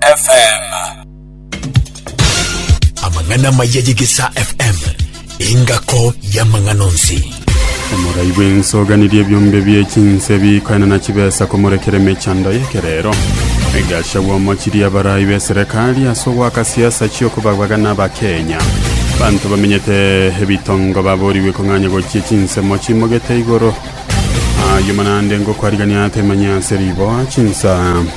FM. Amang'ana amaya y'Egesaa FM, engako y'amang'ana onsi. Omorai bw'ense oganirie ebiombe bie chinse bikoena na chibesa komorekera emechando y'ekerero. Rigasha bw'omochirie abarai b'eserekari ase ogoaka siasa chi'okobagwaga n'Abakenya. Banto bamenyete ebitongo baborigwe kong'anya gochia chinsemo chimogete igoro. Ayio manande ngokwariganiate manya ase riboa chinsa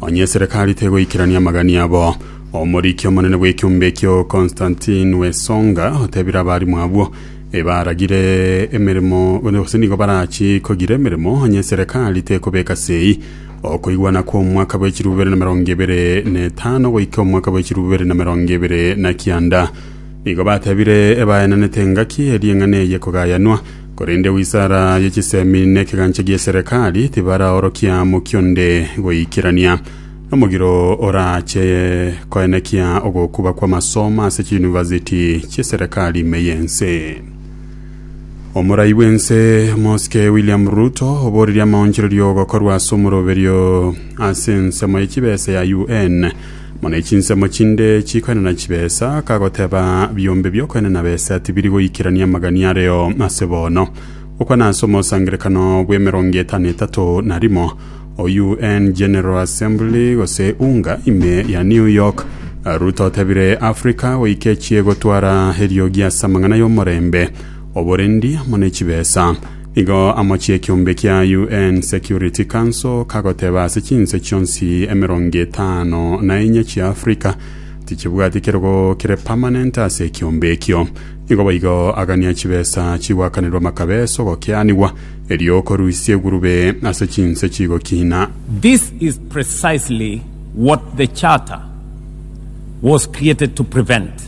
Onye eserekari tegoikerania amagani abo, omoriki omonene bw'ekiombe ekio Constantine Wesonga otebire abarimu abwo ebaragire emeremo gose nigo barachi kogira emeremo onye eserekari tekobeka sei okoigwana kwa omwaka bwe chiribu bibere na merongo ebere na etano goika omwaka bwe chiribu bibere na merongo ebere na kianda. Nigo batebire ebaenanete engaki eri'eng'ana eye kogayanwa Korende Wisara ye Chisemi na Ekegancha gie Serekari tibaraorokia amokia onde goikerania. Nomogiro orache koenekia ogokuba kw'amasomo ase chiyunivasiti chie serekari ime y'ense. Omorai bw'ense Mosike William Ruto oboreria amaonchorerio gokorwa ase omoroberio ase ensemo ye chibesa ya UN Mono echinsemo chinde chikoenena chibesa, kagoteba biombe biokoenena besa tibiri goikerania amagania areo ase bono. Gokwana ase omosangerekano bw'emerongo etano etato na rimo o UN General Assembly gose UNGA ime ya New York, Ruto otebire Africa goika echiegotwara eriogi ase amang'ana y'omorembe, oborendi amo ne chibesa. Igo amochie ekeombe kia UN Security Council kagoteba ase chinse chionsi emerongo etano na enye chia Africa tichibwati kerogo kere permanent ase ekeombe ekio. Nigo boigo agania chibesa chigwakanirwa makabe ase ogokianigwa, erio okorusia egurube ase chinse chigokina. This is precisely what the Charter was created to prevent.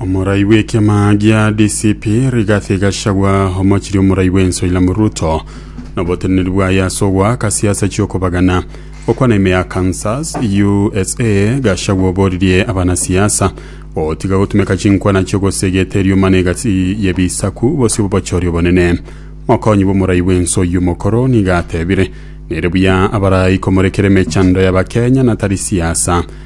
Omorai bw'ekiama gia DCP Rigathi Gachagua omochirie omorai bw'ense William Ruto noboteneneri bwaye ase ogoaka siasa chi'okobagana gokwana ime ya Kansas, USA. Gachagua oboririe abanasiasa gotiga gotumeka chinkwana chi'ogosea egeteri omana egati y'ebisaku bosio b'obochori obonene. Mokonyi bw'omorai bw'ense oyio omokoro nigo atebire, Nere buya abarai komorekera emechando y'Abakenya na tari siasa.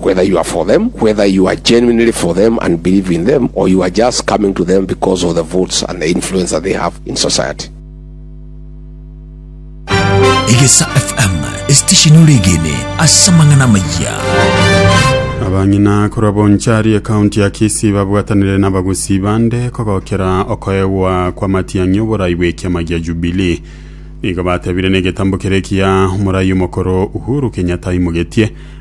Whether you are for them, whether you are genuinely for them and believe in them, or you are just coming to them because of the votes and the influence that they have in society. Egesa FM, esitesheni oregene ase amang'ana amaya. abang'ina korwa bonchari ekaunti ya kisii babwatanire n'abagusi bande kogokera okoegwa kw'amatiang'i oborai bw'ekiama gia jubilee nigo batebire negetambo kere ekiya omorai omokoro uhuru kenyatta aimogetie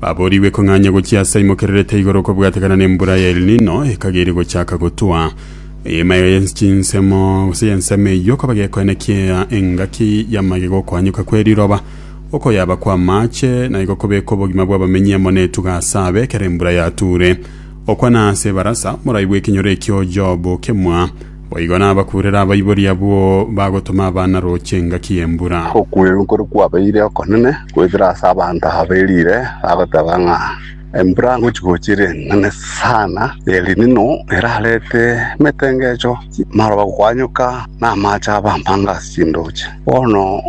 Baboorigwe kong'anya gochia ase aimokererete igoro kobwatekana nembura ya El Nino ekageri gochaka gotwa. Eema eye ye chinsemo gose y'ensemo eyio koba gekoena kiea engaki y'amagega okoanyoka kwe riroba, okoyaba kw'amaache, na igo kobeka obogima bw'abamenyi amo netuga ase abe ekero embura yature. Okwana ase ebarasa, morai bw'ekenyoro ekio Job okemwa. Boigo nabakurere abaibori abwo bagotoma abana roche engaki y'embura. Okwegena okore kwabeire okonene goetera ase abanto aba berire, bagoteba ng'a embura ngochi-gochi ere enene sana na Elinino erarete emetengecho, amaroba gokwanyoka, na amache abe amange ase chindoche. Bono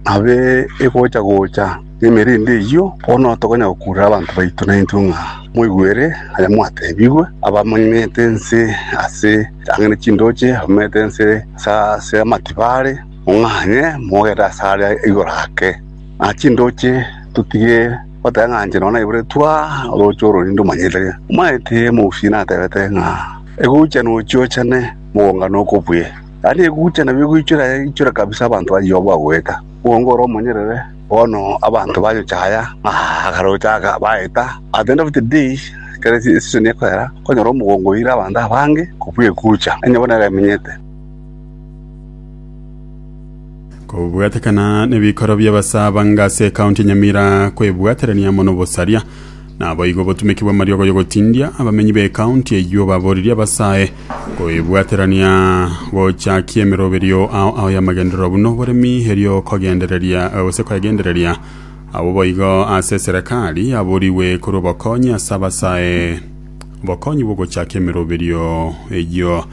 abe egocha-gocha na emerindi eyio, bono tokonya gokurera abanto baito naintwe ng'a moigwere aye mwatebigwe, abamanyete ense ase. Tang'ani chindooche, omete ense ase amatibo are, ong'anye mogere asare igoro ake. Na chindooche totige goteng'ancha nonya naiboretwe aa orooche ororinde omonyete. Omanyete omogusii natebete ng'a egochana ochiochane mogongano okobuya. Yaani egochana nabio egoichora ichora kabisa abanto baria obagoeta, okonge ore omonyerere. Bono abanto bayochaya ng'a akaroche aka baeta, at the end of the day ekero eseason ekoera, kwanyora omogongo oire abanto abange kobua egucha, onye bono ere emenyete. Kobwatekana nebikorwa bi'abasaabanga ase ekaunti ya Nyamira kwebwaterania mono bosaria. Naboigo obotumeki bw'amariogo y'ogotindia abamenyi b'ecounty eyio baboririe abasae koebwaterania gochakia emeroberio ao ao y'amagenderero buna oboremi erio kogendereria gose koegendereria abwo boigo ase eserekari yaborigwe korwa obokonyi ase abasae obokonyi bw'ogochakia emeroberio eyio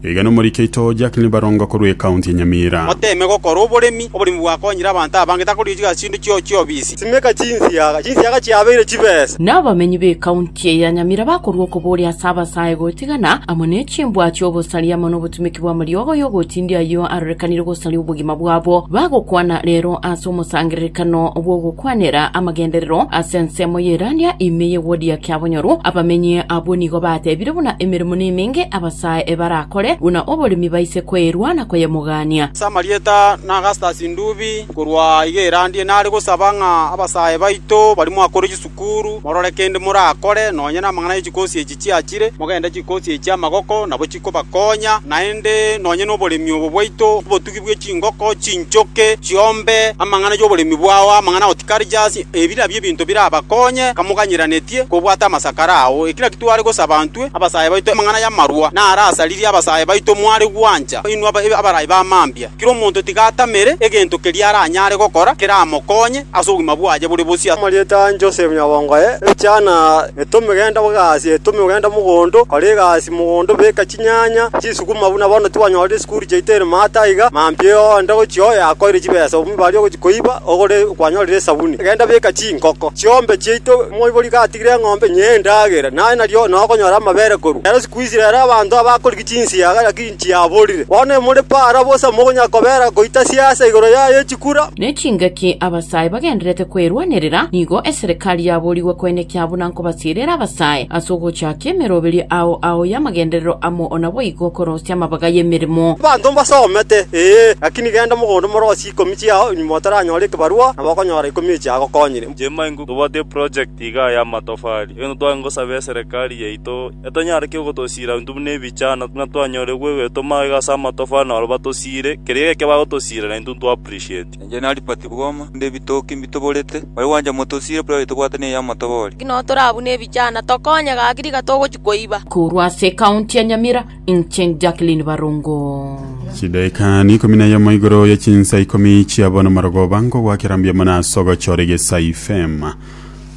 Iga nomorike oito Jacqueline Barongo korwa ekaunti ya Nyamira. Oteme gokora oboremi. Oboremi bwakonyire abanto abange takorisiga chindu chio chiobisi. Simeka chinsiaga. Chinsiaga chiabeire chibesa. Nabamenyi b'ekaunti eye ya Nyamira bakorua okoboria ase abasae gotigana amo nechimbwa chi'obosaria amo nobotumeki bw'amariogo y'ogotindi ayio arorekanire gosaria obogima bwabo. Bagokwana rero ase omosangererekano bw'ogokwanera amagenderero ase ensemo y'Eirania ime y'egwodi ya Kiabonyoru. Abamenyi abwo nigo batebire buna emeremo nemenge aba. Nyasae ebarakore buna oboremi baise koerwa na koyemogania. Ase amarieta na Augustus Ndubi, korwa iga erandie, nare gosaba ng'a abasae baito baria mwakore chisukuru, morore kende morakore, nonya namang'ana ye chikosi echi chiachire, mogende chikosi echi chi'amagoko, nabo chikobakonya, naende nonya noboremi obo bwaito mbotugi. bwe chingoko chinchoke chiombe amang'ana y'oboremi bwao, amang'ana agotikarjasi, ebi nabio ebinto birabakonye kamoganyeranetie kobwata amasakara ao. Eki nakio tware gosaba intwe abasae baito, amang'ana y'amarwa narasaririe abasae baito mware gwancha, inwe abarai ba mambia. Kera omonto tiga atamere egento keria aranyare gokora keramokonye ase obogima bwaye bore bosio. Amarieta a Joseph nyabongo aye, Ebichana, etome genda bw'egasi, etome ogende mogondo, kora egasi mogondo, beka ching'iti. chinyanya, chisukuma buna bono tibanyore esukuru chiaito ere maate aiga, mambia onde ogochia oye akoire chibesa obume baria ogochia koiba ogore kwanyorire esabuni. Genda beka chinkoko chi'ombe chiaito moibori gatigire eng'ombe inye endagera, naye nario nokonyora amabere korwa ere. Siku ici rero abanto abakorigia chinsiaga naki nchiaborire, bono emore para bosa mogonya kobera goita siasa igoro yaye echikura. Nechingaki abasae bagendererete kwerwanerera, nigo eserekari yaborigwe koenekia buna kobasierera abasae ase ogochaakia emeroberio ao ao y'amagenderero amo ona boigo korosia amabaga y'emeremo. Abanto mbasomete, ee, lakini genda mogondo morosie ikomi chiao, nyuma otaranyore ekebarua, nabo okonyora ikomi echi agokonyire. Jemai ng'o tobwate eproject igaa y'amatofari, egento tware ngosaba eserekari yaito etonyare ki ogotosiira intwe buna ebichana, ng'a twanyore gwegoetoma iga ase amatofari na barabwo batosiire keria geke bagotosiira na intwe ntwa appreciate. Inche nari pati bw'oma, korende ebitoki mbitoborete. Oyo gwancha mote osiire buna oyo tobwate neyi y'amatoboori. Naki nao toraa buna ebichana, tokonye gaki riga togochia koiba. Korwa ase ecounty ya Nyamira, inche Jacqueline Barongo. Chidaeka n'ikomi na yemo igoro ye chinsa ikomi chia bono marogoba nkogwakera mbuya mono ase ogochora egesa ifm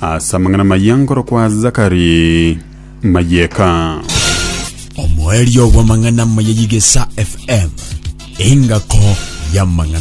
ase amang'ana amayia nkorokwa Zakari Mayeka. Omoerio bw'amang'ana amaya y'egesa FM, engako y'amang'ana.